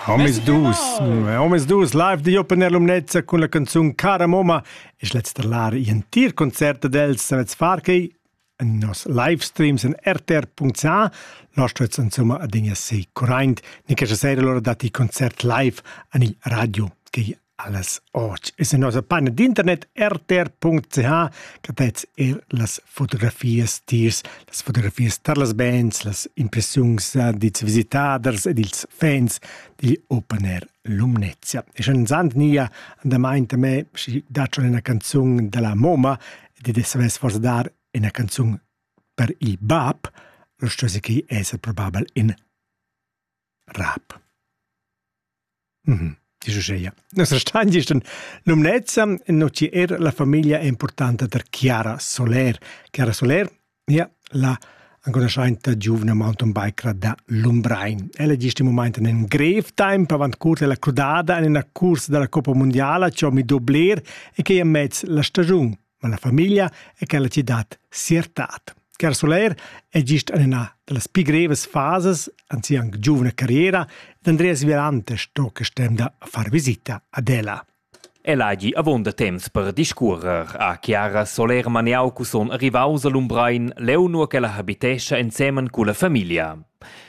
Omisdus, omisdus live di Open Air Lumnezza cun la canzun Cara Moma es lets lar entir concert ad els savets far quei en nos live streams en rtr.ca nostra insomma adegna sei current ni che sera lora dati concert live ani radio che Alles och ist in nossa paina d'internet rtr.ch che vets er las fotografias tiers, las fotografias tar las bands, las impressiuns dils visitaders ed ils fans digl Open Air Lumnezia. E schon sand nia andamaint a me schi daccio una canzun della Moma ed ed savess forse dar una canzun per il bab, lo stesse che è probabel in rap. Mm Dice Scheia. Nos restan gist en lumnezza, no ci er la famiglia importanta der Chiara Soler. Chiara Soler, ja, la anconoscente giovane mountainbiker da Lumbrein. Ella gist in moment in grev tempo avant curta la crudada in una cursa della Coppa Mondiala, ciò mi dobler e che è mezz la stagione. ma la famiglia è quella citad siertad. Car Soler è gist en una da las pi grevas fasas an sia anche giovane carriera ed Andreas Virante sto che stem da far visita ad ella. El hagi avon da temps per discuorer a Chiara Soler Maniau cuson arrivaus a Lumbrein leu nur che la habitescha ensemen cu la famiglia.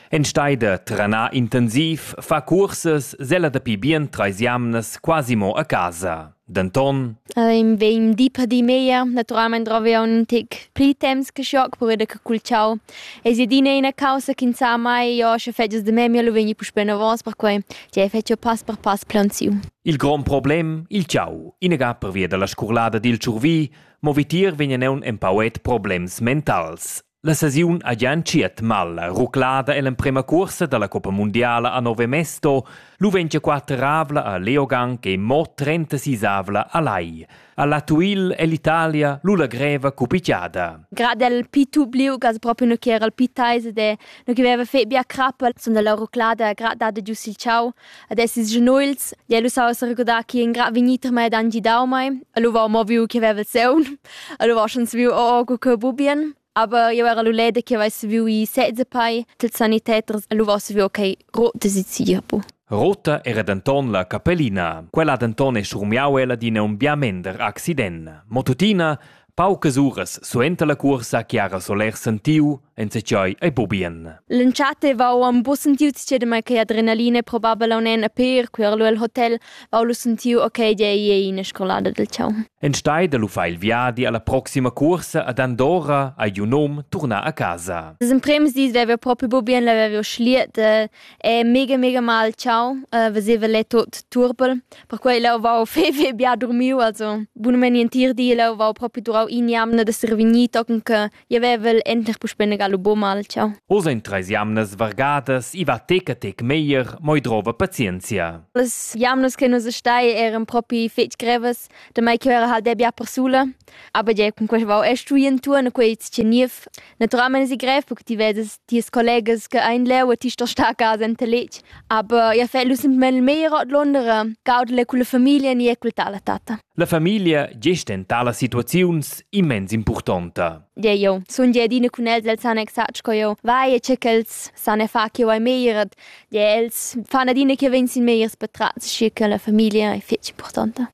En steide trana intensiv fa curses sella dapi bien treis jamnas quasi mo a casa. Denton Ehm, vegn di per di meglier. Naturalmein drovi aunc in tec pli temps che schoc per veder che cul ciao. Ei si adina ina causa che sa mai, io sche fetgias de memia lu vegni puspei novos, perquei che fetgio pass per pass plaunsiu. Il grond problem, il ciao, inaga pervia dalla scurlada dil tschurvi, mo vitier vegnan aunc empauet problems mentals. La sesiun ha gia entschiet mal. Ruclada ell'emprema cuorsa dalla coppa mundiala a Nove Mesto. Lu vegn gia quateravla a Leogang e mo trentasisavla a Lai. Alla Tuil è l'Italia lu la greva cupicchiada. Grad el pitu bliu gas proprio no che era il pitaise de no che veva fe bia crappa son dalla ruclada grad dada giu sil ciao Ad essis genuils, di el usau sa recordar chi in gra vegnit a mei ed han gidau mei. El haveva mo viu che veva seun, el haveva schon saviu oh, oh co cheu bubien. Aber io era lu leda che avessi saviu i sezza pei, ils saniteters el haveva saviu okay rote sezia bu. Rota era denton la capellina. Quella denton è strumiau ella d'ina un bia mender accident. Mo tuttina Paucas uras suenter la cuorsa che ha Soler sentiu enzatgei ei bubien. L'entschatta vau am bu sentiu tschedema che adrenalina probabel aun en a per quer lu el hotel vau lu sentiu ok dei ei ina scolada del ciao. Enstei da lu fa il viadi alla proxima cuorsa ad Andorra ei un hom turnar a casa. In premis dis vevo proprio bubien, l'avevo schliet, E mega, mega mal ciao, uh, veseva lei tot turbel. Perquei leu vau fei, fei bia dormiu, also bunamain entir di leu vau propi durau in'jamna d'esser vegnì, tochen che jeu vevel enter puspei negar lu buca mal ciao. Oz ein treis jamnas vargadas, i va tec a tec meglier, mo i drova pazienzia. Las jamnas che nus stai eran propi fetg grevas, damai che era halt bia persula. Aber ja, cun quei vau e stuì entuorn, quei tscheniev. Naturalmein esi grev buc ti veses tias collegas che ein leu a ti sto star a casa enta letg, aber ia fegl lu semplamein il meglier ordlunder gaudel culla famiglia ni cul tal e tatta. La famiglia gest en talas situaziuns immens impurtonta. Gie, jo. Sun gie adina cun els, els han exact sco jeu. Vai, e che ch'els san e fa che vai meglier. Gie, els fan adina che vegn sin megliers patrats, schi che la famiglia è fetg impurtonta.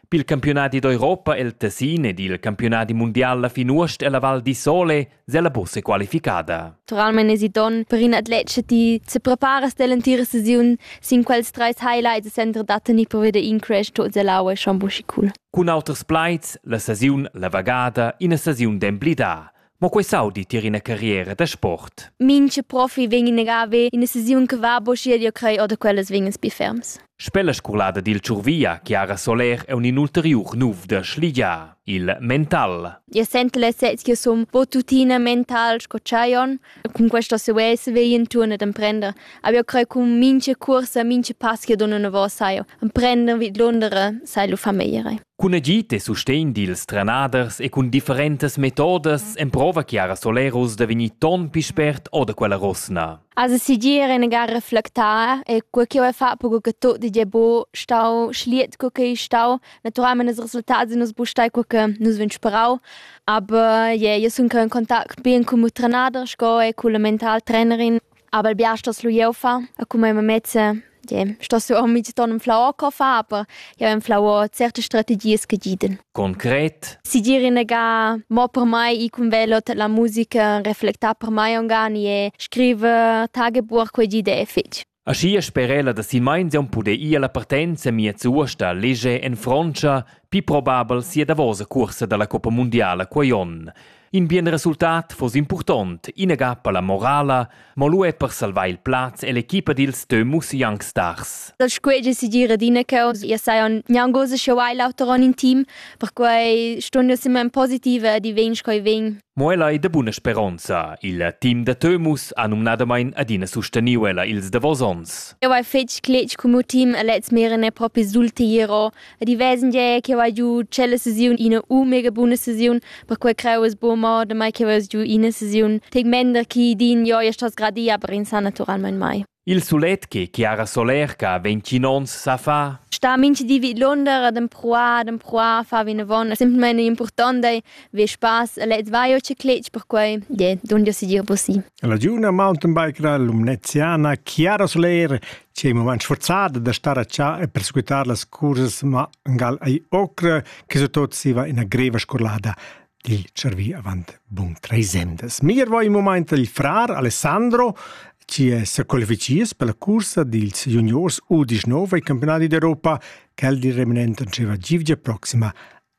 Pil campiunadi d'Europa el Tessin ed il campiunadi mundial la fin uost ella Val di Sole sella bussa qualificada. Totalmein esiton per in atlet che ti se preparas dell'entira sesiun sin quels treis highlights e sentra da tenir per veder in crash tot selaua schon buschi cool. Cun auters plaids la sesiun la vagada ina sesiun d'emblidar. Mo quei saudi tier ina carriera da sport. Minche profi vegn in agavi ina sesiun che va bo schier io crei oder quellas vegnas bi ferms. Spella scolada dil Ciurvia, Chiara Soler è un inulteriur nuf da Schligia, il mental. Io sento la sez che som bo tutina mental sco Chaion. Con questa sovesse vei in turno d'emprender. Aber io crei con minche corsa, minche pass che dona una vosa io. Emprender vid Londra sai lu famiglie. Cun agid e sustegn dils trenaders e cun differentas metodas emprova Chiara Solerus da vegnir ton pli spert o da quella rosna. Also sigir in gar reflectar e quel che ho fatto co che tot di bo stau schliet co che stau naturalmente i resultati nus bu stai co che nus vin sperau aber je io sun in contact bien con il trenader sco e con la mental trainerin Aber bia stos lu jeu fa, a cum ei mamezza, je, stos jeu mi ton un flau co fa, aber jeu ein flau certe strategies che giden. Concret? Si dire nega mo per mai i cum velo la musica reflecta per mai ongani e scrive tagebuch quei gide fich. Aschi sperela da si meinzion pude ir la partenza mia zuosta lege en Frontscha, pi probabel sia davosa cursa dalla Coppa Mondiala quei on. In bien resultat foss impurtont, inaga per la morala, mo lu er per salvar il plaz e l'equipa dils Teumus Young Stars. Dal squeggia si dir adina che io sajan gnangosa che hai l'auter on in team, perquei stun io sempre in positiva di vegn coi vegn. Mo ella è de buna speronza. Il team da Teumus ha numnadamain adina susteniu ella ils davos ons. Io hai fetg cletg cum team e lez meren è propi sulti iero. ed i vesengie che vai giu tschella sesiun ina u mega buna sesiun, perquei creu es buca mo damai che veus giu ina sesiun tegmender chi din jo ja stos gradia, aber in sa naturalmein mai. Il sulet che Chiara Solerca ventgin onns sa fa sta minchi di vid Lunder ad empruar ad empruar fa vinavon simplmein importante vi spaß lez vai o ciclitsch perquei je dun jo si dir bussi La giuvna mountainbiker lumneziana Chiara Soler che è moment sforzada da star a cià e persequitar las cursas mangal ai ocra che su tot siva ina greva scolada dil cervi avant bun treis emdas. Mir vo in moment il frar Alessandro ci è se qualificies per la cursa dils juniors U19 ai campionati d'Europa che il di reminent anceva givgia proxima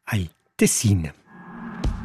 ai Tessin.